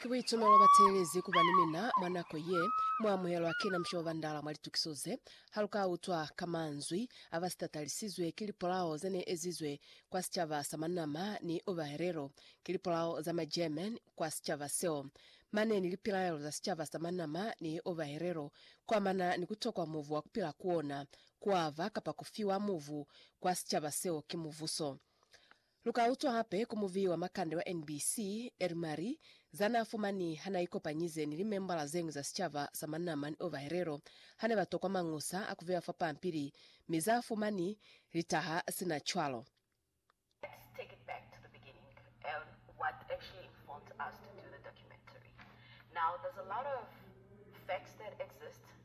Ki buitumelo ba teelezi kuba ni mina mwa nako ye mu amuhelwa kina mushe wa bandala mwa litukiso ze, ha lu ka utwa ka manzwi a ba sitatalisizwe ki lipolao ze ne ezizwe kwa sicaba sa Manama ni Ovaherero, ki lipolao za ma German kwa sicaba seo, mane ni lipilaelo za sicaba sa Manama ni Ovaherero kuamana ni ku tokwa muvu wa kupila ku ona, kuava kapa kufiwa muvu kwa sicaba seo ki muvuso. Lu ka utwa hape ku muviyi wa makande wa NBC, Eri Mari, za n'a fumani ha n'a ikopanyize ni limembala ze ñwi za sicaba sa Manama ni Ovaherero ha ne ba tokwa mañusa a ku bewa fa pampili mi z'a fumani li taha sina cwalo. Let's take it back to the beginning and what actually informed us to do the documentary. Now there's a lot of facts that exist